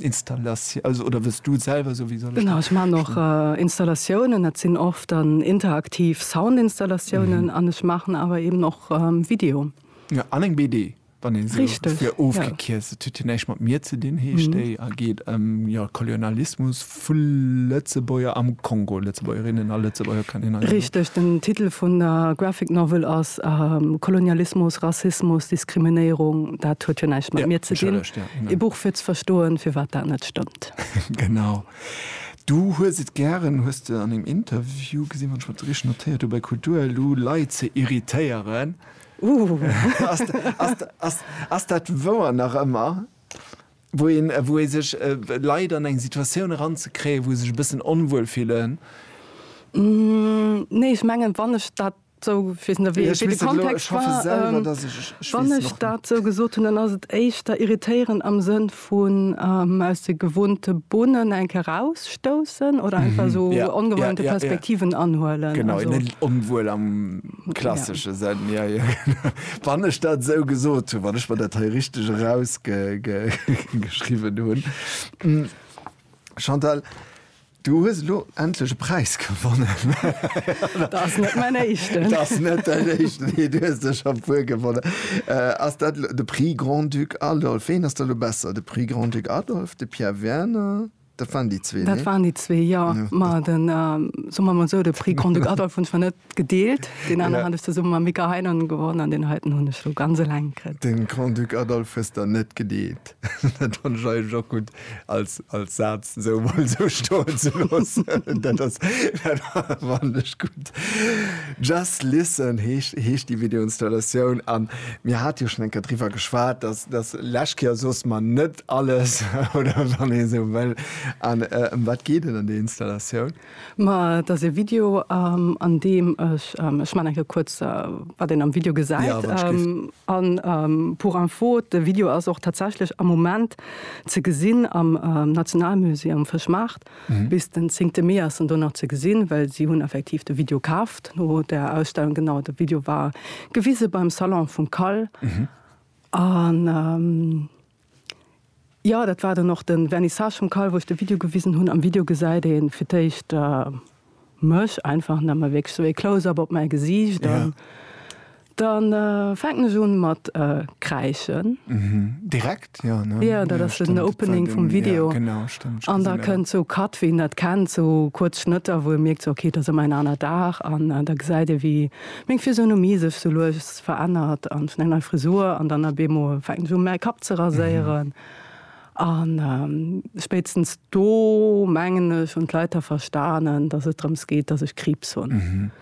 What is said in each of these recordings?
Installation, also oder wëlls du selwer soen? Wéi soll ech dat? Genau, ech maachen och Installatiounen. Dat sinn oft dann interaktiv Soundinstallatiounen an ech maachen awer eeben och Video. Ja, an eng BD, wann een se fir ofgekierzt. Dat huet jo näischt mat mir ze dinn, heescht déi a geet ëm, jo, Kolonialismus. Vu Lëtzebuerger am Kongo, Lëtzebuergerinnen a Lëtzebuerger kann een also. Richteg, den Titel vun der Graphic Novel ass Kolonialismus, Rassismus, Diskriminéierung. Dat huet jo näischt mat mir ze dinn. Ee Buch fir ze verstoen, firwat dat net stëmmt. Genau. Du hues et gären, hues de an engem Interview gesinn, wann ech mer dat richteg notéiert hu bei Kulturelu, Leit ze irritéieren. Ass dat wouer nach ëmmer? wou ee sech Leit an eng Situatioun eranzekréien, wou se sech e bëssen onwuel fillen. Nee, ech mengen, wann ech dat esou, ech weess net, wéi de Kontext war, wann ech dat esou gesot hunn, dann ass et éischter irritéieren am Sënn vun aus de gewohnte Bunnen eng Kéier erausstoussen oder einfach esou ongewohnte Perspektiven anhuelen. Genau, net onwuel am. Klassesche Sënn, jo, jo. Wann ech dat esou gesot hunn, wann ech mer dat hei richteg erausgeschriwwen hunn. Chantal, du hues elo endlech e Präis gewonnen. Dat ass net mäin éischten. Dat ass net däin éischten, mee du hues der scho e puer gewonnen. Ass dat de Prix Grand-Duc Adolphe? Ween ass da elo besser, de Prix Grand-Duc Adolphe, de Pierre Werner? Dat waren déi zwee, Dat nee? waren déi zwee, jo. Jo, Ma dat. den, soe mer emol esou, de Prix Grand-Duc Adolphe hunn zwar net gedeelt, deen aneren hat ech zesumme mam Mika Heinonen gewonnen an deen heiten hunn ech elo ganz eleng kritt. De Grand-Duc Adolphe hues der net gedeelt. Dat fannt ech eigentlech och gutt als, als Saz esou emol esou stoen ze loossen. Dat ass, dat fannt ech gutt. Just Listen heescht, heescht déi Videoinstallatioun. A mir hate jo schonn eng Kéier driwwer geschwat, dass, dass lech Kéier soss mer net alles oder wann ee sou wëll. An ëm wat geet et an där Installatioun? Ma et ass e Video an deem ech, ech man eng Kéier kuerz wat een am Video gesäit, an pour info, de Video ass och tatsächlech am Moment ze gesinn am Nationalmusée um Fëschmaart. Bis den zéngte Mee ass en do nach ze gesinn, well si hunn effektiv de Video kaaft no där Ausstellung. Genau, de Video war gewise beim Salon vum Cal. An jo, dat war dann och de Vernissage vum Call, wou ech de Video gewisen hunn. Am Video gesäit ee fir d'éischt mech einfach nëmme, wierklech sou ee Close-up op mäi Gesiicht. An da fänken ech un mat kräischen. Direkt, jo, ne? Jo, dat ass den Opening vum Video. An da kënnt sou Cut, wéi een dat kennt, sou kuerz Schnëtter, wou ee mierkt, sou, okay, et ass ëmmer en aner Dag. An da gesäit ee, wéi meng Physionomie sech sou lues verännert an vun eng nei Frisur an dann a Bemo fänken se u mäi Kapp ze raséieren. An spéitstens do mengen ech hunn d'Leit da verstanen, datt et drëms geet, datt ech Kriibs hunn.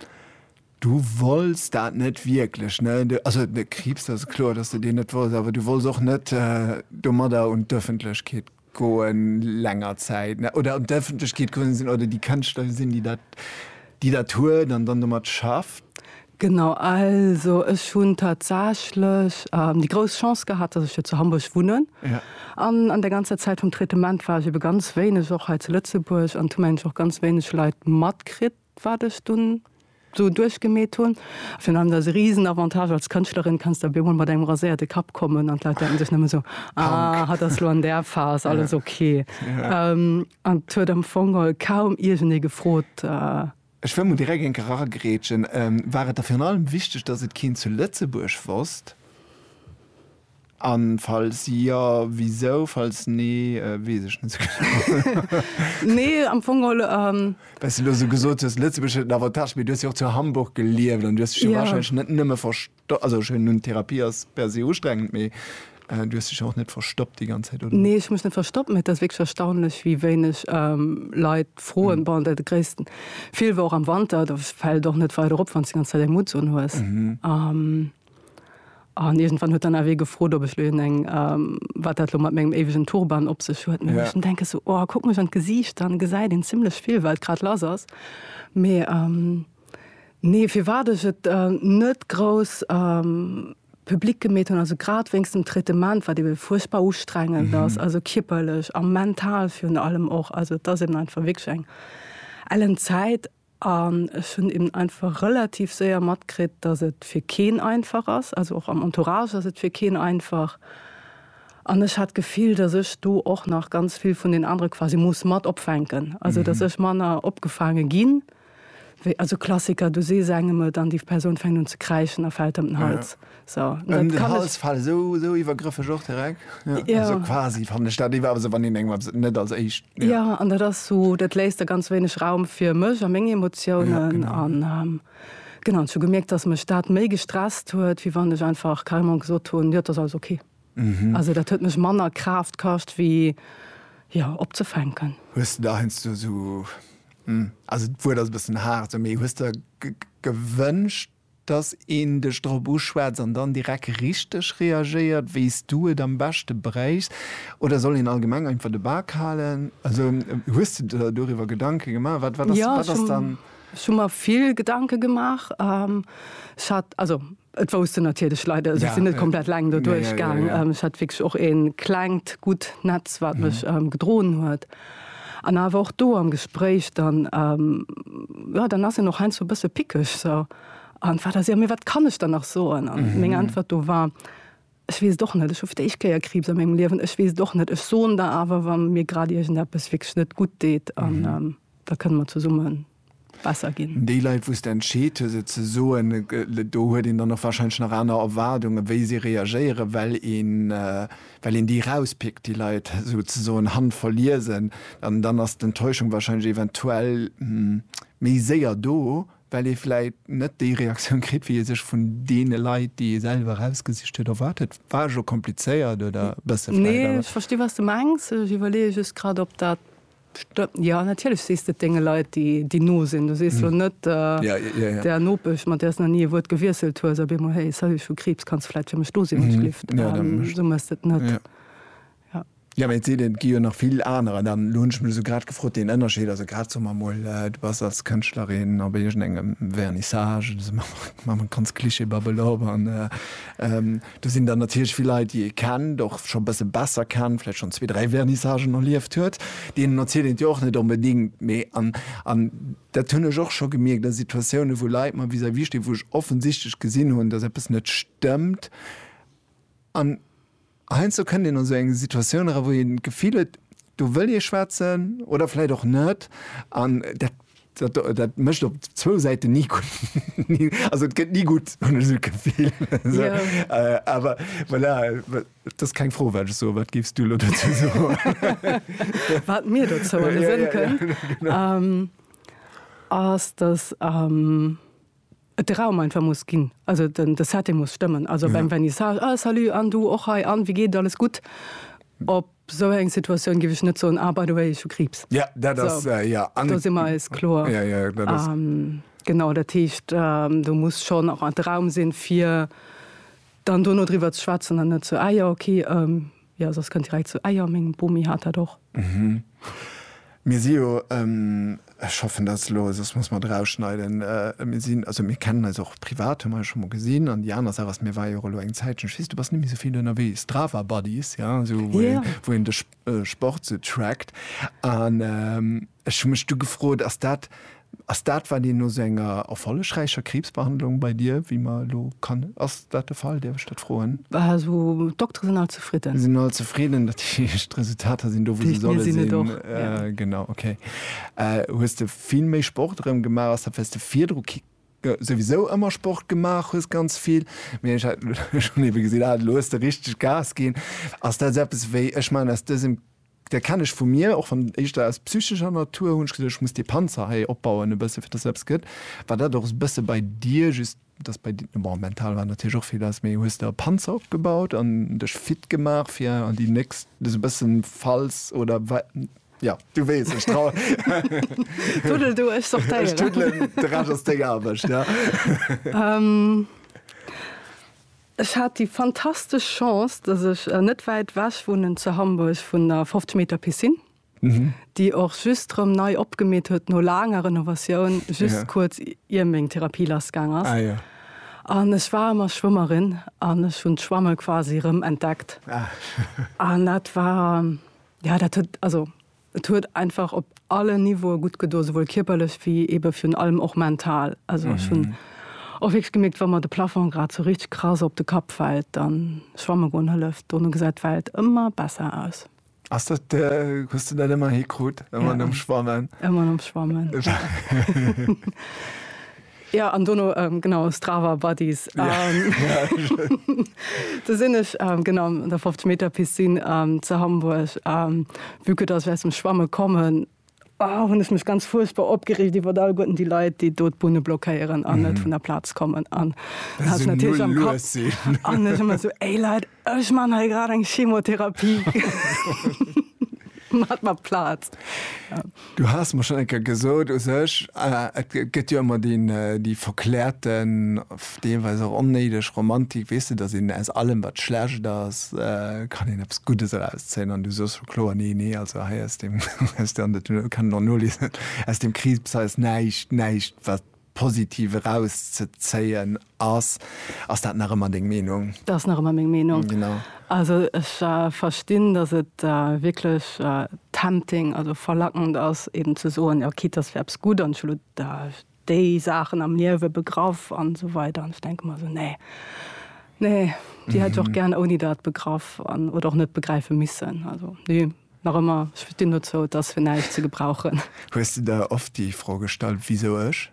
Du wolls dat net wierklech, ne? Also de Kriibs, dat ass kloer, datt s de deen net wolls, awer du wolls och net domadder un d'Ëffentlechkeet Goen länger Zäit ne oder un d'Ëffentlechkeet gerunnen sinn oder déi Kënschtler gesinn, déi dat déi dat huet an dann domat schafft? Genau, also ech hunn tatsächlech déi grouss Chance gehat, datt ech jo zu Hamburg wunnen. Ja. An an der ganzer Zäit vum Traitement war ech ebe ganz wéineg och hei zu Lëtzebuerg an hu mengen ech och ganz wéineg Leit matkritt. wat ech dunn sou duerchgemeet hunn. Virun allem ass e risen Avantage als Kënschtlerin, kanns de op eemol mat engem raséierte Kapp kommen an d'Leit denken sech nëmme sou, ah, hatt ass lo an där Phas, alles ok. An et huet am Fong kaum iergendee gefrot. Ech wëll mol direkt eng Kéier agrätschen, War et der virun allem wichteg, datt et keen zu Lëtzebuerg wosst? An falls jo, wisou? Falls nee, wees ech net sou genau. Nee, am Fong geholl. Well s du elo sou gesot hues, Lëtzebuerg huet en Avantage, mee du hues jo och zu Hamburg gelieft an du hues dech jo warscheinlech net nëmme verstoppt, also ech hunn, Therapie ass per se ustrengend, mee du hues dech jo och net verstoppt déi ganz Zäit, oder? Nee, ech hu mech net verstoppt, mee et ass wierklech erstaunlech, wéi wéineg Leit froen. Bon, de gréissten Feel war och am Wanter, do fält et och net weider op, wann s du déi ganz Zäit eng Mutts unhues. An iergendwann huet dann awer ee gefrot, ob ech lo een eng, wat dat lo mat mengem éiwegen Turban op sech huet. Mee ech denke sou, oh, kuck mech an d'Gesiicht, dann gesäit een zimlech vill, wat grad lass ass. Mee nee, firwat ech et net grouss public gemeet hunn, also grad wéinst dem Traitement, wat ebe fuerchtbar ustrengend ass, also kierperlech a mental virun allem och. Also et ass eben einfach wierklech eng ellen Zäit. An ech hunn eben einfach relativ séier matkritt, dass et fir keen einfach ass, also och am Entourage ass et fir keen einfach. An ech hat d'Gefill, dass ech do och nach ganz vill vun den anere quasi muss mat opfänken, also dass ech manner opgefaange ginn, wéi, also Klassiker, du sees engem et an déi Persoun fänkt un ze kräischen a fält ëm den Hals. So, um den Hals fallen, so, so iwwergrëffeg och direkt. Ja. Ja. Also quasi fan de Stadt iwwer se wann den eng net als eich. Ja. ja an dat ass so dat léist der ganz wéineg Raum fir mech a meng Emotiounen ja, an. Ähm, genau zu gemerkt, dass mech dat méi gestresst huet, wie wann ech einfach Kalmon gesot hun ja, das alles okay. Mhm. Also dat huet mech manner Kraft kascht wie ja opzefänken. Hues du da hest du so hm, also wo das bessen hart so méi hues der gewünscht Dass een dech drop uschwätzt an dann direkt richteg reagéiert, wéi s du et am beschte bréichs. Oder soll een allgemeng einfach de Bak halen? Also hues de der doriwwer Gedanke gemaach? Wat, wat ass, wat ass dann. Jo, ech hu mer vill Gedanke gemaach. Ech hat, also et wousst en natierlech Leit, also ech sinn net komplett eleng doduerch gaang. Ech hat wierklech och e klengt, gutt Netz, wat mech gedroen huet. An awer och do am Gespréich, dann, jo, dann ass een och heiansdo e bësse pickeg, so, an wat ass, jo, mee wat kann ech dann nach soen? An meng Äntwert do war, Ech weess et och net, ech hu fir d'éischt Kéier Kriibs a mengem Liewen, ech weess et och net. Ech soen der awer, wa mir grad iergendeppes wierklech net gutt deet, an da kënne mer zesumme besser ginn. Déi Leit, wou s de entscheet hues, et ze soen, do huet een dann och warscheinlech nach aner Erwaardungen, wéi si reagéieren, well een déi erauspickt, déi Leit souzesoen handverliesen. An dann ass d'Enttäuschung warscheinlech eventuell méi séier do, well ee vläicht net déi Reaktioun kritt, wéi ee sech vun deene Leit, déi ee selwer erausgesicht huet, erwaart huet. War ech elo komplizéiert oder e bësse vläicht? Nee, ech versti wat s de mengs. Ech iwwerleeë just grad, ob dat Pst, Jo, natierlech sees de et denge Leit, déi no sinn. Du sees jo net der Nopesch, mat där s nach ni e Wuert gewiesselt hues, op eemol, Hey, salut, ech hu Kriibs, kanns du vläit fir mech do sinn, alsblift? Esou méchs de et net. Jo, mä et seet een, et gi jo nach vill anerer. Dann, elo hunn ech mech esou grad gefrot, deen Ënnerscheed, also grad, soe mer emol, du bass als Kënschtlerin op iergendengem Vernissage, elo soe mer emol, maache mer ganz Klischee-Babbel op, an Do sinn dann natierlech vill Leit, déi ee kennt, och scho e bësse besser kennt, vläicht schonn zwee, dräi Vernissagen erlieft huet. Deenen erzielt een et jo och net onbedéngt. Mee, an an dat hunn ech och scho gemierkt a Situatiounen, wou Leit mer vis-à-vis stinn, wou ech offensichtlech gesinn hunn, datt eppes net stëmmt. An heiansdo kënnt een an esou eng Situatioun era, wou een d'Gefill huet, do wëll ee schwätzen oder vläicht och net. An dat Dat, dat mécht op zwou Säiten ni gutt. Also et gëtt ni gutt, hunn ech esou d'Gefill. Esou. Yeah. Awer voilà, dat ass keng Fro, wat ech soen. Wat géifs du elo dozou soen? Wat mir dozou an de Sënn kënnt, ass, datt. et de Raum einfach muss ginn, also den de Setting muss stëmmen, also beim Vernissage, ah salut an du och hei an wéi geet et, alles gutt? Op esou eng Situatioun géif ech net soen, ah by the way ech hu Kriibs. Jo, dat ass, jo. An do si mer eis kloer. Jo, jo, dat ass. Genau, dat heescht do muss schonn och de Raum sinn, fir dann do no driwwer ze schwätzen an net sou, ah jo, okay. Jo, soss kënnt direkt zu Eier. Meng Bomi hat dat och. Mhm. Mir si jo, ech hoffen, dat ass elo, soss muss mer et erausschneiden, mir sinn, also mir kennen eis och privat, hu mer eis scho mol gesinn. An déi aner Saach ass, mir ware jo och elo eng Zäitchen, ech weess, du bass net méi esou vill ënnerwee, Strava Buddies, jo, esou wou een, wou een de Sport sou trackt. An ech hu mech du gefrot, ass dat, Ass dat wat een no sou enger erfollegräicher Kriibsbehandlung bei dir, wéi mer elo kann, ass dat de Fall, däerf ech dat froen? Also d'Doktere sinn all zefridden. Sinn all zefridden, dat heescht d'Resultater sinn do wou se solle sinn. Genau, ok. Hues de vill méi Sport erëm gemaach? Ass dat well s de virdru souwisou ëmmer Sport gemaach hues, ganz vill, mee ech hat elo schonn ebe gesinn, ah elo hues de richteg Gas ginn. Ass dat sou eppes wéi, ech maachen aus dësem Dee kennen ech vu mir, och wann éischter aus psychescher Natur, hunn ech gesot, ech muss dee Panzer hei opbauen e bësse fir dass eppes gëtt, war dat och e bësse bei dir, just dass bei, bon mental war natierlech och vill lass, mee hues de e Panzer opgebaut an dech fit gemaach fir an déi nächst, sou e bëssen falls oder wa, jo du weess ech trau. Tuddel du, ech sortéieren. Ech tuddelen, de Rescht ass deng Aarbecht, jo. Ech hat déi fantastesch Chance, dass ech net wäit wech wunnen zu Hamburg vun der 50 Meter Piscine, déi och just rëm nei opgemeet huet no laanger Renovatioun, just kuerz ier meng Therapie lass gaang ass. An ech war ëmmer Schwëmmerin an ech hunn d'Schwamme quasi rëm entdeckt. An dat war, jo, dat huet, also. Et huet einfach op allen Niveaue gutt gedo, souwuel kierperlech wéi eebe virun allem och mental. Also ech hunn och wierklech gemierkt, wa mer de Plafong grad sou richteg krass op de Kapp fält, da schwamme goen hëlleft. Dono gesäit d'Welt ëmmer besser aus. Ass dat de, hues de dat ëmmer hikrut, ëmmer nom Schwammen? Ëmmer nom Schwammen. Ja an dono genau Strava Buddies do sinn ech genau an der 50 Meter Piscine ze Hamburg vue que dass ech aus dem Schwamme kommen hunn ech mech ganz fuerchtbar opgereegt iwwert alleguerten déi Leit, déi do d'Bunne blockéieren an net vun der Plaz kommen an hat natierlech am Kapp an ech ëmmer esou, Ey Leit! Ech man hei grad eng Chemotherapie mat mat Plaz. Du has mer schon enker gesot u sech äh, et gëtt jo ëmmer deen äh, déi verklärten, deelweis och onnéideg Romantik, weess de, datt een aus allem wat schlecht ass, äh, kann een eppes Guddes erauszéien an du soos scho kloer, nee, nee, also hei aus deem, aus deem, an dat kann een och noliesen, aus deem Kriibs hei ass näischt, näischt wat positiv eraus ze zéien ass. Ass dat nach ëmmer deng Meenung? Dat ass nach ëmmer meng Meenung. Genau. Also ech verstinn, datt et wierklech tempting, also verlackend ass eben ze soen, jo quitte dass fir eppes gutt an ech hu déi Saachen am Liewe begraff an esou weider an ech denke mer esou nee, nee déi hätt ech och gären ouni dat begraff an oder och net begräife missen. Also nee. Nach ëmmer, ech stinn dozou, et ass fir näischt ze gebrauchen. Hues de der oft déi Fro gestallt, Wisou ech?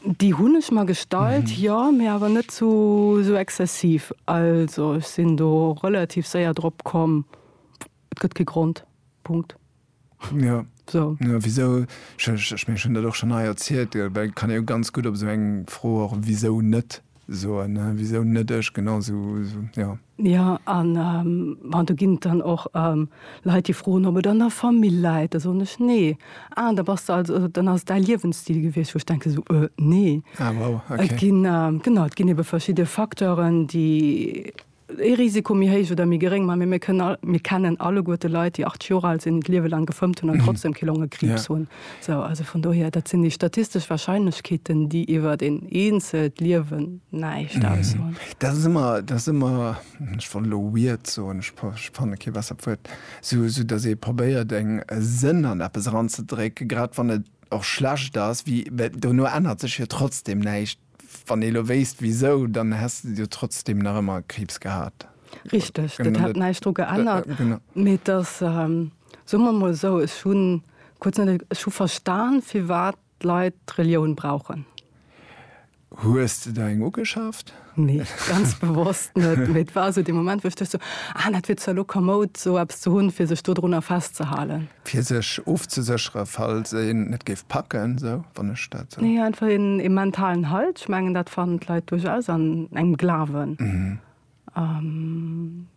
Déi hunn ech mer gestallt, jo, mee awer net sou exzessiv. Also ech sinn do relativ séier drop komm, et gëtt kee Grond. Punkt. Jo, wisou? Ech mengen, ech hunn dat och schonn hei erzielt, well kann ee jo ganz gutt op esou eng Fro och wisou net soen, wisou net ech, genau sou, jo. Jo, an bon, do ginn et dann och Leit, déi froen, ob et an der Famill läit. Da soen ech, Nee. Ah, da bass de also, dann ass et däi Liewensstil gewiescht, wou ech denken esou, Äh, nee. Ah, wow, okay. Et ginn, genau, et ginn ebe verschidde Facteuren, déi ee Risiko méi héich oder méi geréng, mä mir kënnen all, mir kennen alleguer de Leit, déi 80 Jor al sinn, d'Liewe laang gefëmmt hunn an trotzdem kee Longekriibs hunn. Esou, also vun dohier, dat sinn déi statistesch Warscheinlechkeeten, déi iwwert een eenzelt Liewen näischt aussoen. Dat ass ëmmer, dat ass ëmmer, ech wollt elo weird soen, ech fanne kee bessert Wuert, esou datt ee probéiert eng, e Sënn an eppes eranzedrécken, grad wann et och schlecht ass, wéi, well dono ännert sech jo trotzdem näischt. Wann ee lo wéisst wisou, dann häss de jo trotzdem nach ëmmer Kriibs gehat. Richteg, dat hätt näischt dru geännert. Mee et ass, soe mer emol esou, ech hu kuerz net, ech hu verstan, firwat d'Leit d'Relioun brauchen. Hues de der eng ugeschaaft? Nee, ganz bewosst net. Mee et war esou dee Moment, wou ech duecht esou, ah, dat wier zwar lo komoud, esou eppes ze hunn, fir sech dodrunner festzehalen. Fir sech ofzesécheren, falls een et géif packen, esou, wann ech dat esou. Nee, einfach een, ee mentalen Halt. Ech mengen, dat fannen d'Leit duerchaus an engem Glawen.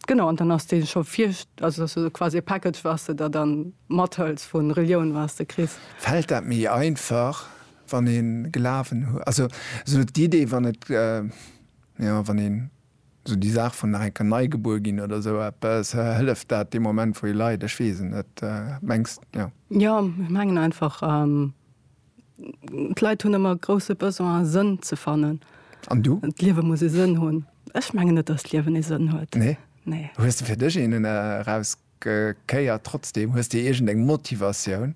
Genau, an dann ass dee scho vir, also dass du quasi e Package, was de der dann mathëls vu Relioun, was de kriss. Fält dat méi einfach, wann ee Glawen huet? Also esou d'Idee, wann et, jo, wann een. Sou déi Saach vun nach eng Kéier nei gebuer ginn oder sou eppes, hëlleft dat dee Moment wou ee leit? Ech weess et net, mengs jo? Jo, ech mengen einfach, d'Leit hunn ëmmer e grousse Besoin Sënn ze fannen. An du? D'Liewe muss e Sënn hunn. Ech mengen net, datt d'Liewen ee Sënn huet. Nee? Nee. Hues de fir dech een eraus Kéier trotzdem? Hues de iergend eng Motivatioun?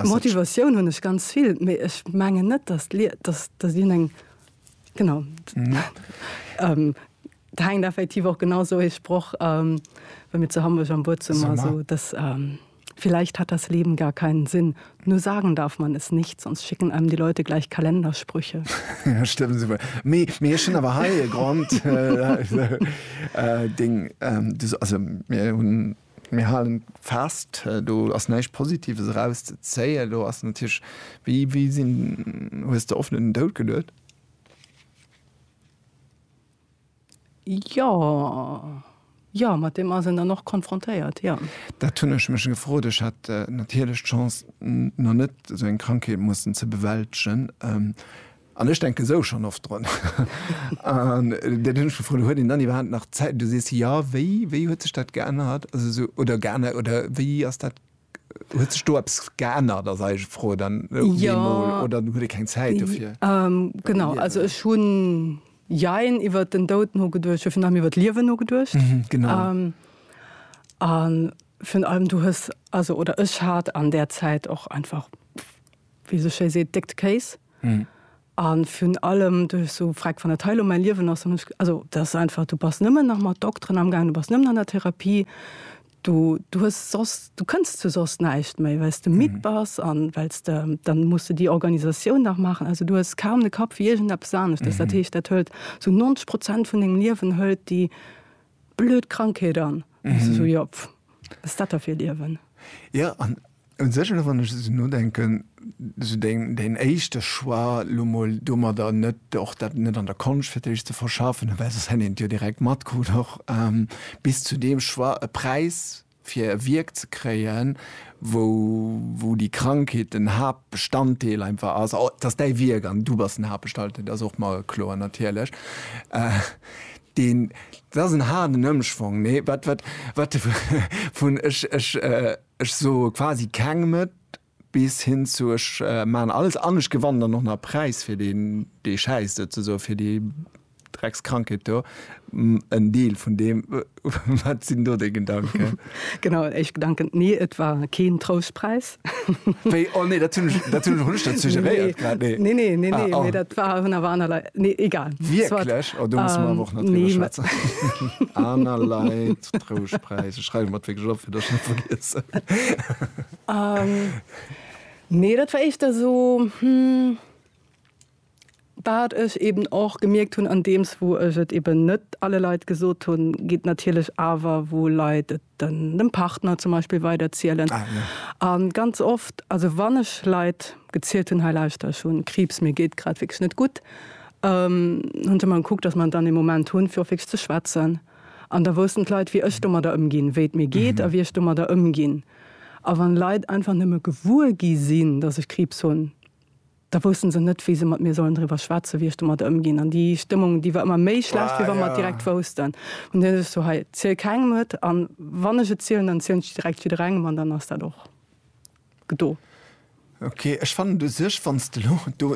Motivatioun hunn ech ganz vill, mee ech mengen net, datt dien eng genau et hänkt effektiv och genau esou ee Sproch wéi mir zu Hamburg am Buedzummer, esou dass vielleicht hat das Leben gar keinen Sinn. Nur sagen darf man es nicht, sonst schicken einem die Leute gleich Kalendersprüche. ja, stimmt super. Mir, mir schon aber heil Grund. Äh, Ding, ähm, das, also, mir hun, mir halen fast, äh, du hast nicht Positives rauszuzählen, du hast natürlich, wie, wie sind, hast du offenen Dout gelöst? Jo, jo, mat deem ass een dann och konfrontéiert, jo. Dat hunn ech mech gefrot. Ech hat natierlech d'Chance, nach net esou eng Krankheet mussen ze bewältegen. An ech denken esou schonn oft drun. An dat hunn ech gefrot, huet een dann iwwerhaapt nach Zäit? Du sees jo, wéi, wéi huet sech dat geännert? Also esou, oder geännert, oder wéi ass dat, huet sech do eppes geännert, ass eis Fro dann op eemol, oder huet ee keng Zäit dofir? Genau, also ech hunn Jein, iwwert den Doud nogeduecht, jo, virun allem iwwert d'Liewen nogeduecht. Mhm, genau. A virun allem du hues, also oder ech hat an där Zäit och einfach, wéi ee sou schéi seet, déckt Kéis. Mhm. A virun allem du hues sou gefragt, wann dat hei elo mäi Liewen ass, dann hunn ech, also dat ass einfach, du bass nëmmen nach mat Dokteren amgaangen, du bass nëmmen an der Therapie, Du, du hues soss, du kënns zu soss näischt méi, well s de midd bass an well s de, dann muss de déi Organisatioun nach maachen. Also du hues kaum de Kapp fir iergendeppes aneschters. Dat heescht, dat hëlt sou 90 Prozent vun dengem Liewen, hëlt déi blöd Krankheet an. An du sou, jo, pff, wat ass dat da fir e Liewen? Jo, an Un sech, elo wann ech esou nodenken, esou deen éischte Choix, elo mol domadder net, och dat net an der Konscht fir d'éischt ze verschaffen, well soss hätt een et jo direkt matkrut och, bis zu deem Choix, e Präis fir e Wierk ze kréien, wou déi Krankheet den Haaptbestanddeel einfach ass, et ass däi Wierk an du bass den Haaptbestalddeel, dat ass och mer kloer natierlech, deen, dat ass en haarden Ëmschwong, nee, wat, wat, wat, vun, ech, ech. Ech soe quasi kengem et, bis hin zu ech maachen alles an ech gewannen dann och nach e Präis fir deen, dee schäisst, souzesoen, fir déi Dreckskrankheet do. En Deel vun deem. Wat sinn do deng Gedanken? Genau, éischt Gedanken, Nee, et war keen Troustpräis. Wéi? Oh nee, dat hunn ech, dat hunn ech och net dat suggeréiert grad, nee. Nee, nee, nee, nee, mee dat war, hunn awer aner Leit, nee, egal. Wierklech? Oh, do musse mer awer och nach driwwer schwätzen. Aner Leit. den Trouschtpräis. Ech schreiwe mer et wierklech op, fir dass ech net vergiessen. Nee, dat war éischter esou, wat ech eeben och gemierkt hunn, andeems wou ech et eeben net alle Leit gesot hunn, geet natierlech awer, wou Leit et dem Partner zum Beispill weiderzielen. A ganz oft, also wann ech Leit gezielt hunn, hei lauschter, ech hu Kriibs, mir geet grad wierklech net gutt, hunn se mer gekuckt, dass mer dann ee Moment hunn, fir och wierklech ze schwätzen. An da woussten d'Leit, wéi ech domadder ëmginn, wéi et mir geet a wéi ech domadder ëmginn. A wann Leit einfach nëmme gewuer gi sinn, datt ech Kriibs hunn, da wousste se net, wéi se mat mir sollen driwwer schwätzen, wéi ech domadder ëmginn. An déi Stëmmung, déi war ëmmer méi schlecht, wéi wa mer et direkt woussten. An dunn hu sech sou, hei, ziel kengem et, an wann ech et zielen, dann zielen ech et direkt jidderengem, an dann ass dat och. do. Ok, ech fannen u sech, wann s de elo do,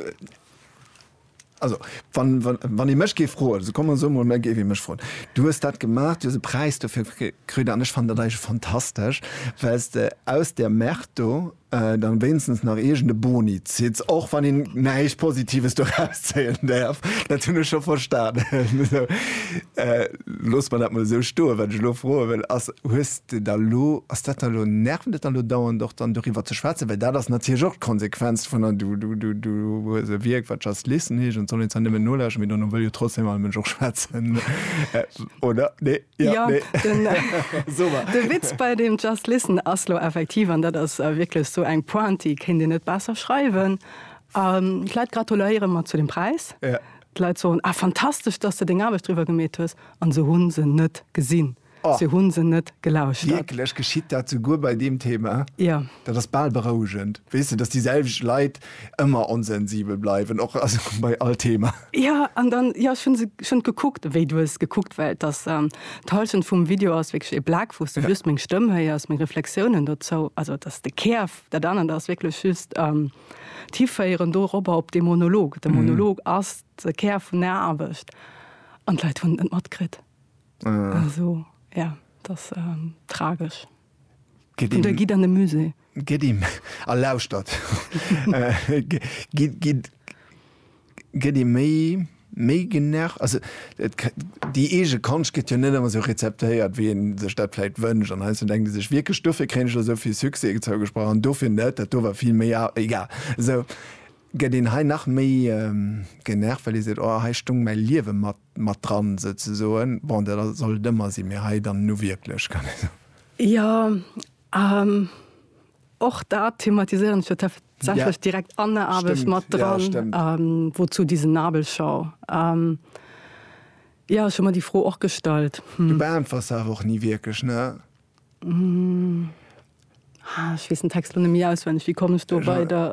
also wann ee mech géif froen, also komm esou mol, mä géif ee mech froen, du hues dat gemaach, du hues e Präis dofir kritt an ech fannen dat eigentlech fantastesch, well s de aus där Merde do da wéinstens nach iergend e Boni zitt, och wann een näischt Positives doraus zéien däerf, dat hunn ech scho verstanen. loosse mer dat mol esou stoen. Wat ech elo froe wëll ass, hues de da elo, ass dat da elo, nervt dat da elo dauernd och dann doriwwer ze schwätzen? Well dat ass natierlech och d'Konsequenz vun der, du, du, du, du hues e Wierk wat Just Listen heescht an et soll een zwar nëmmen nolauschteren, mee dono wëll jo trotzdeem all Mënsch och schwätzen, oder? Nee? Jo? Jo, Nee? den, Super. de Witz bei deem Just Listen ass elo effektiv, an dat ass wierklech esou eng Pointe, déi kéint een net besser schreiwen, ähm, d'Leit gratuléiere mer zu dem Präis, Ja. D'Leit soen, Ah, fantastesch, dass de deng Aarbecht driwwer gemeet hues. An se hu se net gesinn. Oh. Se hu se net gelauschtert. Wierklech? Geschitt dat souguer bei deem Thema? Jo. Dat ass bal berouegend. Weess de, dass déi selwecht Leit ëmmer onsensibel bleiwen, och, also bei all Thema. Jo, an dann, jo, ech hu se schonn gekuckt, wéi du hues gekuckt, well dass d'Hallschent vum Video ass wierklech ee Black, wou s de just meng Stëmm héiers, meng Reflexiounen dozou, also dass de Kär, dat anert ass wierklech just. d'hiféieren doropper op dee Monolog. De Monolog ass de Kär vun der Aarbecht an d'Leit hunn et net matkritt. Also jo, et ass tragesch. An da gitt an de Musée. Gitt a lauschtert. Gitt. Gëtt ee méi méi genervt? Also et déi eege Konscht gëtt jo net ëmmer esou rezeptéiert wéi een sech dat vläicht wënscht an heiansdo denkt ee sech wierklech dofir kréien ech elo esou vill Succès zougesprach an dofir net, dat do war vill méi a. Egal. Esou gëtt een hei nach méi genervt, well ee seet oh hei stoung mäi Liewe mat mat dran souzesoen. Bon dat ass soll et ëmmer sinn, mee hei dann nu wierklech kann ee soen. Jo, Och dat thematiséieren ech jo tatsächlech direkt an der Aarbecht mat dran, Wozu diese Nabelschau? Jo, ech hu mer déi Fro och gestallt. Du beäntwers se awer och ni wierklech, ne? Ech weess den Text lo net méi auswenneg. Wéi komm ech do weider?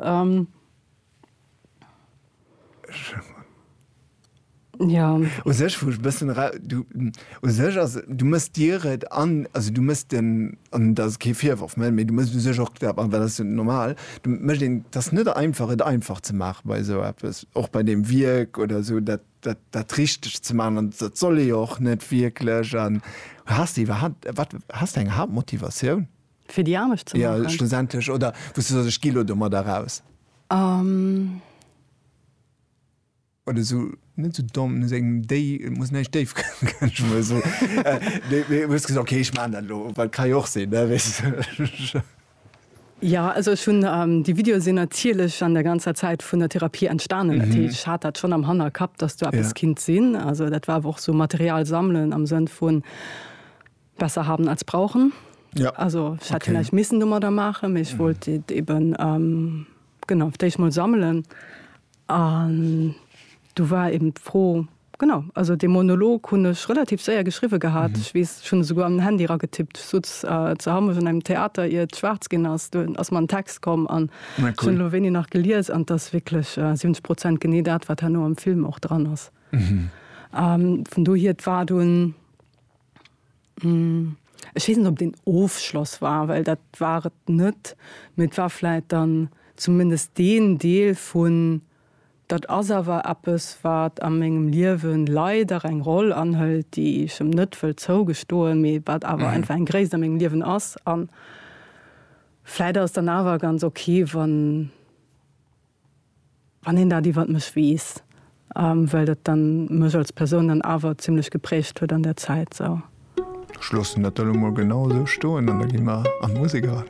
Ja. U sech, wou ech e bëssen era, du, u sech ass, du mëss dir et an, also du mëss den, an dat ass kee Virworf, mä du mëss u sech och, an dat ass jo normal, du mécht een, et ass net einfach et einfach ze maachen bei esou eppes, och bei deem Wierk oder esou dat, dat, dat richteg ze maachen an dat soll ee jo och net wierklech. An has de iwwerhaapt, wat, has de eng Haaptmotivatioun? Fir déi Aarbecht ze maachen? Jo, schlussendlech. Oder wou s du soss, ech gi lo domadder eraus. Um. Oder esou, net esou domm, no sengem déi, et muss näischt déif kënnen, mä esou, mee, mee hues gesot, okay, ech maachen dat elo, well et ka jo och sinn, ne, weess de. Jo, also ech hunn déi Videoe sinn natierlech an der ganzer Zäit vun der Therapie entstanen. Dat heescht, ech hat dat schonn am Hannerkapp, dass do eppes kinnt sinn. Also dat war awer och esou Material sammelen am Sënn vun, Besser haben als brauchen. Ja. Also ich hätte okay. vielleicht missen dummer da machen, ich mhm. wollte eben ähm, genau ich mal sammeln. Und du war eben froh genau also den Monolog hun ich relativ sehr geschrieben gehabt. Mhm. Ich weiß schon sogar am Handy ra getippt so äh, zu haben in einem Theater ihr schwarz gehen hast du aus meinem Text kommen an cool. schon wenig nach geliers an das wirklich äh, 70 Prozent gene dat war nur am Film auch dran ist. Mhm. Ähm, von du hier war du ein Ech weess net, ob et een Ofschloss war, well dat war et net. Mee et war vläit dann zumindest deen Deel vun, dat ass awer eppes, wat a mengem Liewe leider eng Roll anhëlt, déi ech em net wëll zougestoen, mee wat awer einfach eng Gréisst a mengem Liewen ass. A vläit ass et dann awer ganz ok, wann. Wann een dat iwwert mech weess, well dat dann mech als Persoun dann awer zimlech geprägt huet an der Zäit sou. Ech loossen dat dann emol genau esou stoen an da gi mer an d'Musek eran.